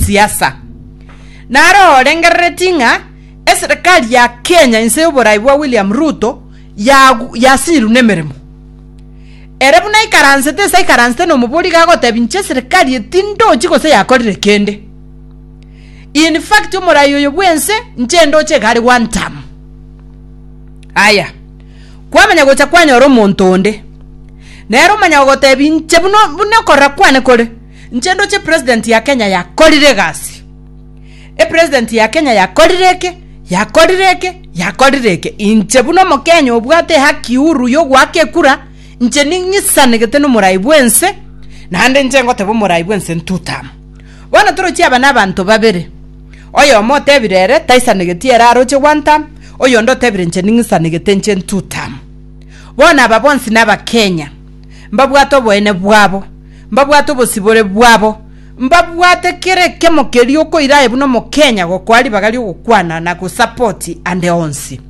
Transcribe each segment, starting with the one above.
siasa. Naro orengerereti ng'a eserekari ya Kenya inse y'oborai bwa William Ruto yagu- yasiirwe nemeremo. Ere buna aikaransete ase aikaransete nomobori iga agotebi inche eserekari eye tindochi gose yakorire kende. In fact omorai oyo bwense inche ndoche iga are one term. Aya, kwamanya gocha kwanyora omonto onde, nere omanya gogotebi inche buna buna okorora kwane kore. Inche ndoche president ya Kenya yakorire egasi e president ya Kenya yakorire eke yakorire eke yakorire eke inche buna omokenya obwate haki huru yogoaka ekura inche ning'isanegete nomorai bwense naende inche ngoteba omorai bwense ntutama bono torochie aba nabanto babere oyomo otebire ere taisanegeti ere aroche one term oyonde otebire inche ning'isanegete inche ntutama bono aba bonsi naba Kenya mbabwate oboene bwabo. mbabwate obosibore bwabo, mbabwate kera ekemo keria okoira aye buna omokenya gokoa ribaga ri'ogokwana na gosapoti ande onsi.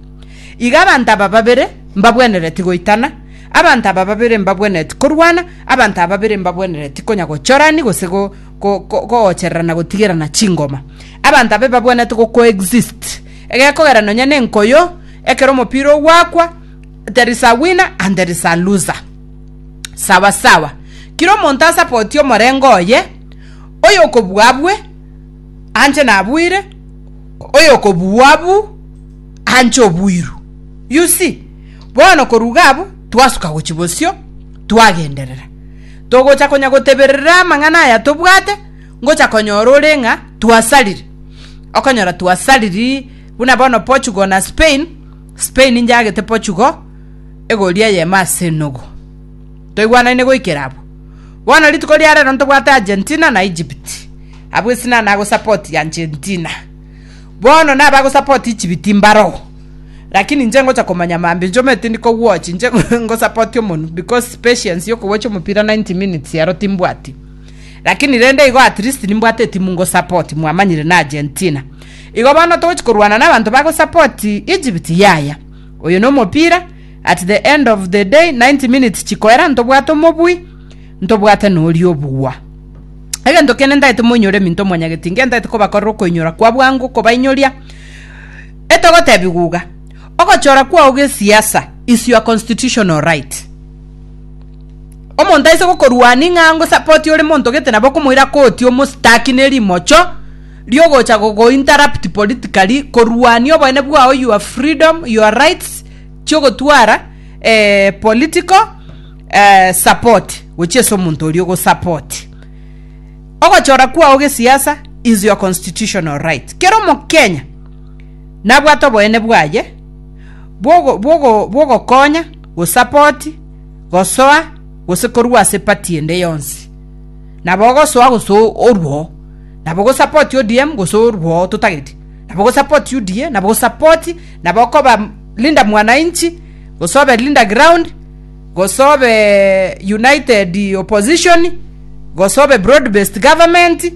Iga abanto aba babere mbabwenereti goitana, abanto aba babere mbabwenereti korwana, abanto aba babere mbabwenereti konya gochorani gose go- go- go- goochererana gotigerana chingoma. Abanto aba ebabwenete gocoexist, egekogera nonya nenkoyo ekero omopira ogwakwa there is a winner and there is a loser. sawasawa. Kera omonto asapoti omorenge oye, oyokobua abue, anche nabuire, oyokobua abu, anche obuiru. You see? Bono korwa iga abwo, twasuka gochia bosio, twagenderera. Togocha konya goteberera amang'ana aya tobwate, ngocha konyora ore ng'a twasariri. Okonyora twasariri, buna bono Portugal na Spain, Spain inchagete Portugal, egoria y'eema ase enogo. Toigwanaine goikera abwo. Bono rituko ria rero ntobwate Argentina na Egypt. Abwo esina nago support Argentina. Bono na ba go support Egypt mbaro. Lakini nche ngocha komanya mambi nchoma etindi ko watch nche ngo support omonu because patience yo ko watch omopira 90 minutes ero timbwati. Lakini rende igo at least nimbwate etimu ngo support mwamanyire na Argentina. Igo bono togochi korwana na abanto ba go support Egypt yaya. Oyo nomopira, at the end of the day 90 minutes chikoera ntobwate omobui, ntobwate noria obugwa. Egento kende ntagete moinyore eminto mwanyageti nge ntagete kobakorera okoinyora kwa bwango kobainyoria etogotebiguga ogochora kwao gesiasa is your constitutional right omonto aise gokorwani ng'a ngo support ore monto gete nabo okomoira koti omostaki nerimocho riogocha gogo interrupt politically korwania oboene bwao your freedom your rights chiogotwara eh, political eh, support gochia ase omonto oria ogosupport ogochora kwao gesiasa is your constitutional right kero omokenya nabwate oboene bwaye bwogo- bwogo- bwogokonya gosapoti gosoa gose korwa ase pati ende yonsi nabo ogosoa gose o- orwo nabo go support ODM gose orwoo totageti nabo go support UDA nabo go support nabo okoba Linda mwananchi gose obe Linda ground gose obe united opposition gose obe broad based government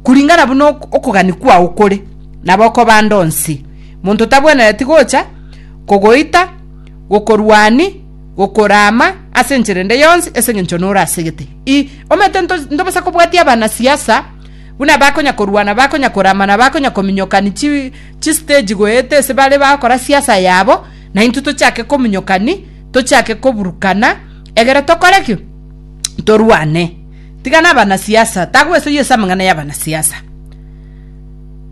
kuringana buna okogani kwao kore nabo okoba ande onsi monto tabwenereti gocha kogoita gokorwani gokoraama ase enchera ende yonsi ase engencho nore asegete. I omanyete nto ntobasa kobwatia abana siasa buna bakonya korwana bakonya korama na bakonya kominyokani chi chi stage goeta ase bare bakora siasa yabo na intwe tochake kominyokani tochake koburukana egere tokore ki torwane tigana abana siasa tagoesoyia ase amang'ana ya abana siasa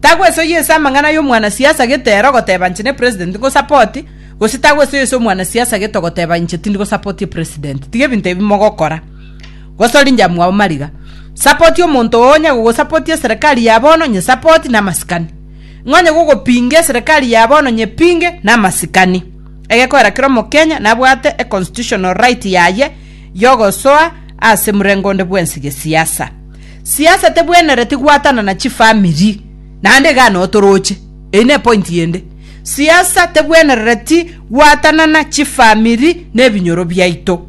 tagoesoyia ase amang'ana ya omwana siasa gete ero ogoteba inche ne president nko support Gose tagwesoyeso omwanasiasa gete ogoteba inche tindi gosapoti epresident. Tiga ebinto ebi mogokora. Gose ori injamwa abo mariga. Sapoti omonto oo onye gogosapotia eserekari ya bono nye sapoti na amasikani. Ng'a onye gogopinga eserekari ya bono nye pinge na amasikani. Egekoera kera omokenya nabwate e constitutional right yaye yogosoa ase murengo onde bwensi gesiasa. Siasa tebwenereti gwatanana chifamiri. Naende iga notoroche. Eyi nepointi ende. Siasa tebwenerereti gwatanana chifamiri na ebinyoro biaito.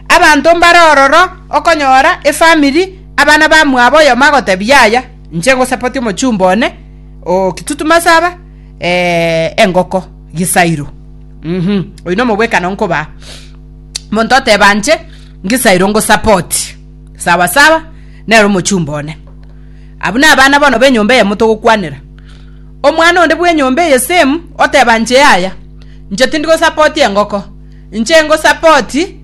Abanto mbare ororo okonyora efamiri abana bamwabo oyomo agotebia yaya inche ngosapoti omochumba one o kitutu masaba eh, engoko gisairo mhm oyu no mobwekano nkoba monto oteba nche ngisairo ngosapoti sawa sawa nero omochumba one abuna abana bono benyomba eyemo togokwanera Omwana onde bw'enyomba eye Sem oteba inche yaya, inche tindigosapoti engoko, inche ngosapoti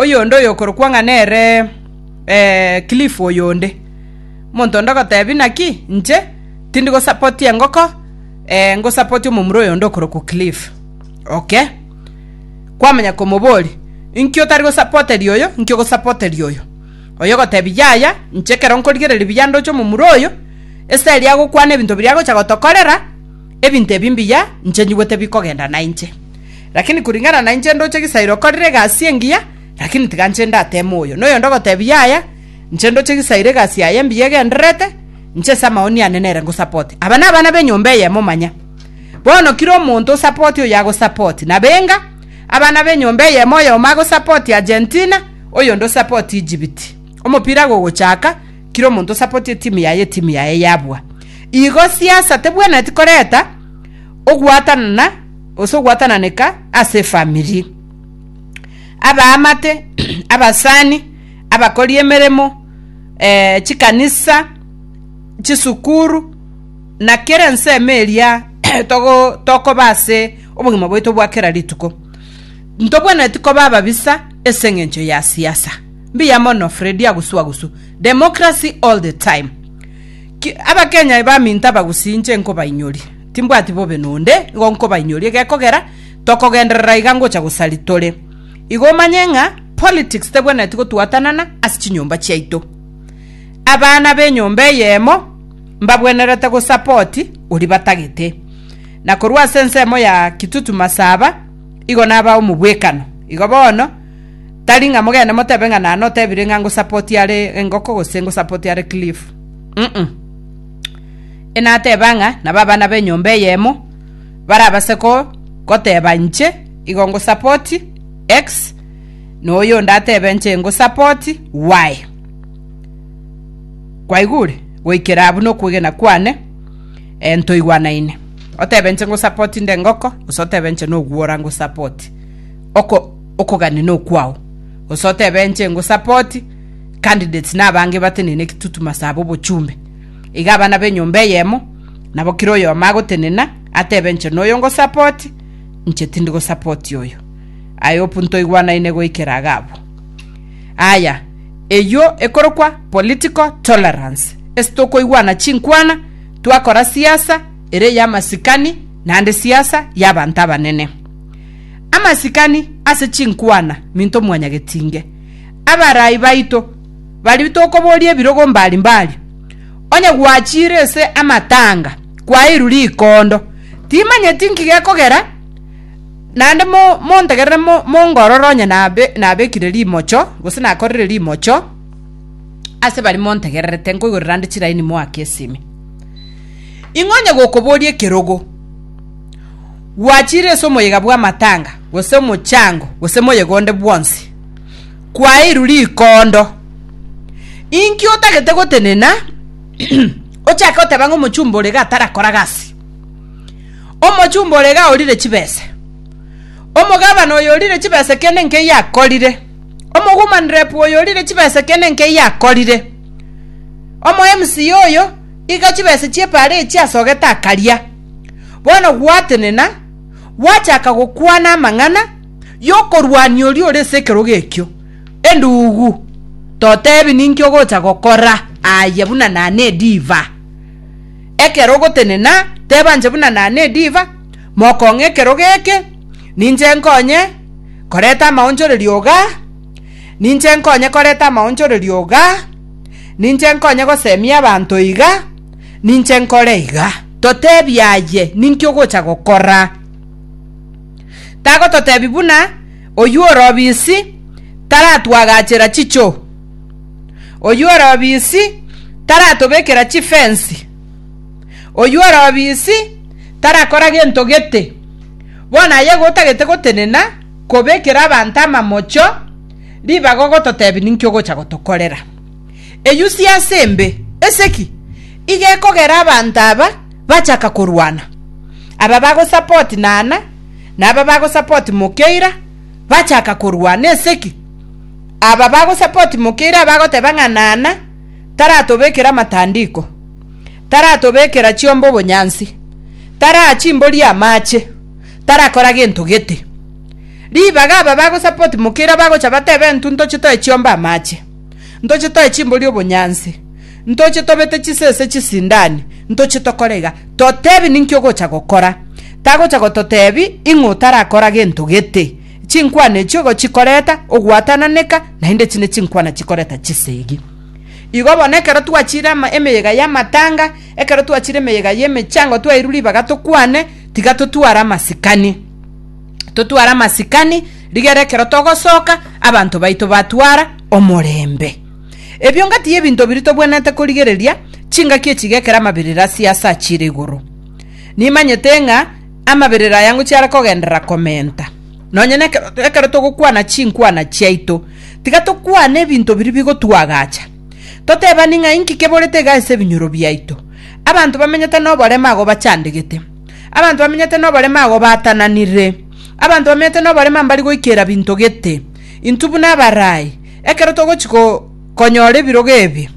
oyonde oyokorokwa ng'a nere Cliff oyonde. Omonto onde ogotebi naki inche tindigosapoti engoko, ngosapoti omomura oyonde okorokwa Cliff. Oke. Kwamanya komoboria, inki otari gosapoteria oyo, inki ogosapoteria oyo? oyogotebia, Yaya, inche ekero nkorigereria buya ndoche omomura oyo, esegi agokwana ebinto biria agocha gotokorera, ebinto ebi mbuya, inche nyigwe tebikogenda nainche. Rakini kuring'ana nainche ndoche Gisairo okorire egasi engiya, rakini tiga inche ndateme oyo. Na oyonde ogotebia, Yaya, inche ndoche Gisairo egasi yaye engiya egendererete, inche ase amaoni ane nere ngosapoti. Aba nabana b'enyomba eyemo manya. Bono kera omonto osapoti oyo agosapoti. Nabenga, abana b'enyomba eyemo oyomo agosapoti Argentina, Oyonde osapoti Ejibiti. Omopira iga ogochaka, kera omonto osapoti etimu yaye, etimu yaye yabua. Igo siasa tebwenereti koreta ogwatanana gose ogwatananeka ase efamiri. Abaamate, abasani, abakori emeremo, eh, chikanisa, chisukuru, na kera ensemo eria togo tokoba ase obogima bwaito bwa kera rituko. Ntobwenereti koba ababisa ase engencho ya siasa. Mbuya mono Freddy Agusuagusu, Democracy all the time. Ki, abakenya ebaminto abagusi inche nkobainyoria. Timbwati bobe nonde, igo nkobainyoria egekogera tokogenderera iga ngocha gosari tore. Igo omanye ng'a politics tebwenereti gotwatanana ase chinyomba chiaito. Abana b'enyomba eyemo mbabwenerete gosapoti oria batagete. Na korwa ase ensemo ya Kitutu Masaba, Igo naba omobwekano. Igo bono, tari ng'a mogende motebe ng'a naye notebire ng'a ngosapoti are engoko gose ngosapoti are Cliff. Uh-uh. Enateba ng'a nabo abana b'enyomba eyemo barabase ko goteba inche igo ngosapoti X na oyonde atebe inche ngosapoti Y. Kwaigure? Goikera abwo nokwegena kwane. Ntoigwanaine. Otebe inche ngosupport inde engoko, gose otebe inche nogwora ngosupport oko okogania nokwao. Gose otebe inche ngosupport candidates na abange batenene ekitutu masabo obochumbe. Iga abana benyomba eyemo, nabo kira oyomo agotenena, atebe inche noyo ngosupport, inche tindi gosupport oyo. I hope ntoigwanaine goikera iga abwo. Aya, eyio ekorokwa political tolerance. Ase tokoigwana chinkwana, twakora siasa ere y'amasikani naende siasa y'abanto abanene. Amasikani ase chinkwana minto mwanyagetinge. Abarai baito baria tokoboria ebirogo mbari mbari. Onye gwachiire ase amatanga kwaeirwe rikondo, timanyeti nki gekogera naende montegerere mongorore onye nabekire rimocho gose nakorire rimocho. ase baria montegererete nkoigorera nde chiraini moake esimi. Ing'o onye gokoboria ekerogo gwachiire ase omoyega bw'amatanga, gose omochango, gose moyega onde bwonsi, kwaeirwe rikondo. Inki otagete gotenena ochake goteba ng'a omochumba ore iga atarakora gasi? Omochumba ore iga orire chibese, omogabana oyo orire chibese kende nkeiyo akorire. Omogumanirepu oyo orire chibesa ekeene nkeyio akorire. Omo MC oyo iga chibesa chi'epaara echio asogete akaria. Bono gwatenena, gwachaka gokwana amang'ana y'okorwania oria ore ase ekerogo ekio, Endugu, totebi ninki ogocha gokora aye buna nane ediva. Ekero ogotenena, teba inche buna nane ediva, mokong'e ekerogo eke, ninche nkonye, koreta amaonchorerio iga, ninche nkonye koreta amaonchorerio iga, ninche nkonye gosemia abanto iga, ninche nkore iga. Totebie aye, ninki ogocha gokora? Tagototebia buna oyio ore obisi taratwagachera chichoo, oyio ore obisi taratobekera chifensi. Oyio ore obisi tarakora gento gete. Bono aye gotagete gotenena kobekera abanto amamocho ribaga ogototebia ninki ogocha gotokorera. Eyio siasa embe. Ase ki? Iga ekogera abanto aba bachaka korwana. Aba bagosupport Naana na aba bagosupport Mokeira bachaka korwana ase ki? Aba bagosupport Mokeira abagoteba ng'a Naana taratobekera amatandiko. taratobekera chiomba obonyansi, taraa chimbori amache, tarakora gento gete. Ribaga aba bagosupport Mukira bagocha batebe intwe ntoche toe chiomba amache, ntoche toe chimbori obonyansi, ntoche tobete chisese chisindani, ntoche tokore iga. Totebi ninki ogocha gokora. Tagocha gototebi ing'o otarakora gento gete. Chinkwana echio igo chikoreta ogwatananeka naende echi ne chinkwana chikoreta chisegi. Igo bono ekero twachiire emeyega y'amatanga, ekero twachiire emeyega y'emechango twairwe ribaga tokwane, tiga totware amasikani. Totware amasikani rigere ekero togosoka abanto baito batwara omorembe. Ebio ngatiga ebinto biria tobwenerete korigereria, chingaki echi iga ekero amaberero asio aase achiire igoro. Nimanyete ng'a amaberero aya ngochiara kogenderera komenta. Nonya nekero ekero togokwana chinkwana chiaito, tiga tokwane ebinto biria bigotwagacha, totebani ng'a inki keborete iga ase ebinyoro biaito. Abanto bamenyete noborema agwo bachandegete, abanto bamenyete noborema agwo baatananire, abanto bamenyete noborema mbari goikera binto gete. Intwe buna abarai, ekero togochi go konyora ebirogo ebi,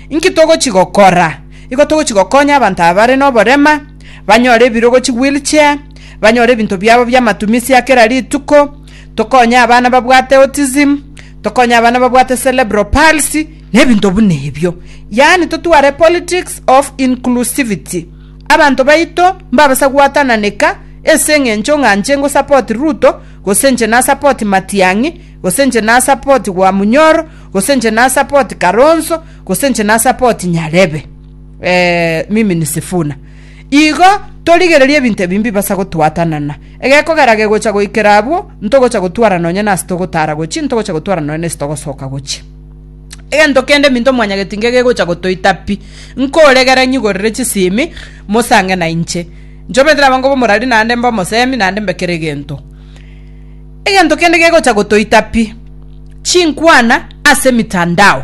inki togochi gokora? Igo togochi gokonya abanto aba bare noborema, banyore ebirogo chiwheelchair, banyore ebinto biabo bi'amatumisi a kera rituko, tokonye abana babwate autism, tokonye abana babwate cerebral palsy, na ebinto buna ebio. Yaani totware politics of inclusivity. Abanto baito mbabasa gwatananeka ase eng'encho ng'a inche ngosupport Ruto, gose inche nasupport Matiang'i, gose inche nasupport Gwamunyoro, gose inche nasupport Kalonzo, gose inche nasupport Nyarebe. eh, mimi ni Sifuna. Igo torigererie ebinto ebi mbibasa gotwatanana. Egekogera gegocha goikera abwo, ntogocha gotwara nonye nase togotara gochia, ntogocha gotwara nonye nase togosoka gochia. Egento kende minto mwanyagetinge gegocha gotoita pi. Nkoregere nyigorere chisimi, mosange na inche. Nchobete nabango bomorari naende mbe omosemi, naende mbe kera egento. Egento kende gegocha gotoita pi. Chinkwana ase emitandao.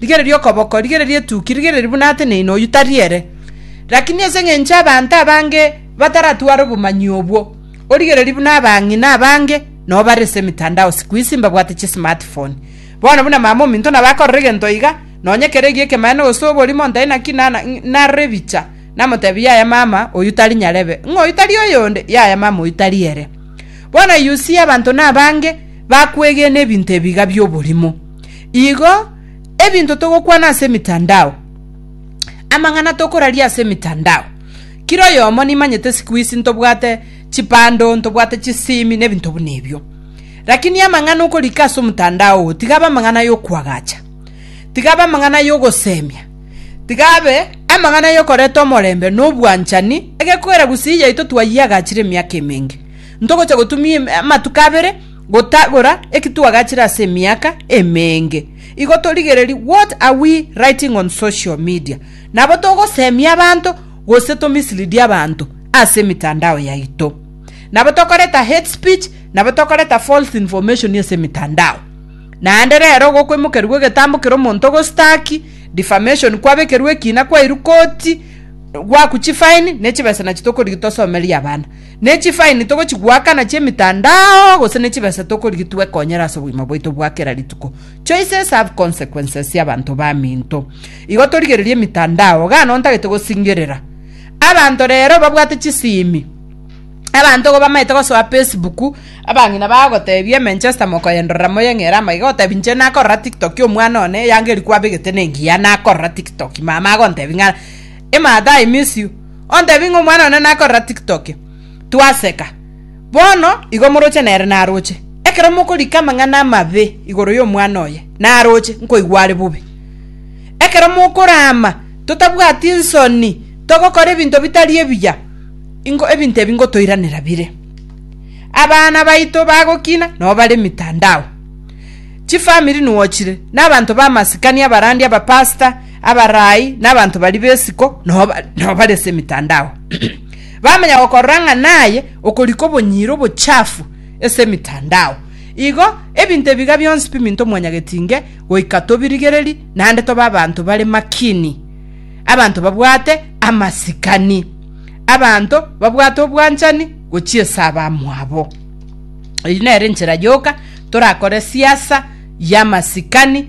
Rigereria okoboko, rigereria etuki, rigereria buna ateneine oyio tari ere. Lakini ase engencho abanto abange bataratware obomanyi obwo, origereria buna abang'ina abange nabo bare ase emitandao sikuisi mbabwate chismartphone. Bono buna mama ominto nabo akorora egento iga, nonye ekero egiya ekemaene gose oborimo ntae naki nana narora ebicha, namotebia yaya mama oyio tari nyarebe, ng'a oyio tari oyonde, yaya mama oyio tari ere. Bono you see abanto nabange bakwegena ebinto ebi iga bioborimo. Igo ebinto togokwana ase emitandao, amang'ana tokoraria ase emitandao, kera oyomo nimanyete siku ici ntobwate chibando, ntobwate chisimi na ebinto buna ebio. Lakini amang'ana okorika ase omotandao oo tiga abe amang'ana ya okoagacha, tiga abe amang'ana ya ogosemia, tiga abe amang'ana ya okoreta omorembe na obwanchani, egekogera gusii yaito twayiagachire emiaka emenge, ntogocha gotumia em- amatuko abere, Gotagora eki twagachire ase emiaka emeenge, igo torigererie what are we writing on social media, nabo togosemia abanto gose to mislead abanto ase emitandao yaito. Nabo tokoreta hate speech, nabo tokoreta false information ase emitandao. Naende rero igo kwemokerigwe egetambo kere omonto ogostaki, defamation, kwabekerwe ekina, kwairwa koti, gwaku chifine, ne chibesa nachi tokorigia tosomerie abana. Ne chifaini togochigwakana chi'emetandao gose ne chibesa tokorigia twekonyere ase obogima bwaito bwa kera rituko. Choices have consequences y'abanto baminto. Igo torigererie emetandao, iga noo ntagete gosingerera. Abanto rero babwate chisimi. Abanto igo bamaete gosoa Facebook, abang'ina bagotebia eManchester mokoyendorera moyeng'ere amagega gotebia inche nakorora tiktok omwana one eyanga eria kwabegete nengiya nakorora tiktok mama agontebia ng'a Ematha I miss you. ontebie ng'a omwana one nakorera tiktoki, twaseka. Bono igo moroche nere naroche. Ekero mokorika amang'ana amabe igoro y'omwana oye, naroche, nkoigwa are bobe. Ekero mokorama totabwati nsoni, togokora ebinto bitari ebiya, ingo ebinto ebi ngotoiranera bire. Abana baito bagokina, nabo bare emitandao. Chifamiri nuochire, na abanto b'amasikani abarandi, abapastor, Abarai na abanto baria b'esiko nao bare ase emetandao, bamanya gokorora ng'a naye okorika obonyiro obochafu ase emetandao. Igo ebinto ebiga bionsi biminto mwanyagetinge goika tobirigererie, naende tobe abanto bare makini, abanto babwate amasikani, abanto babwate obwanchani gochia ase abamwabo. Eyio nere enchera yoka torakore siasa y'amasikani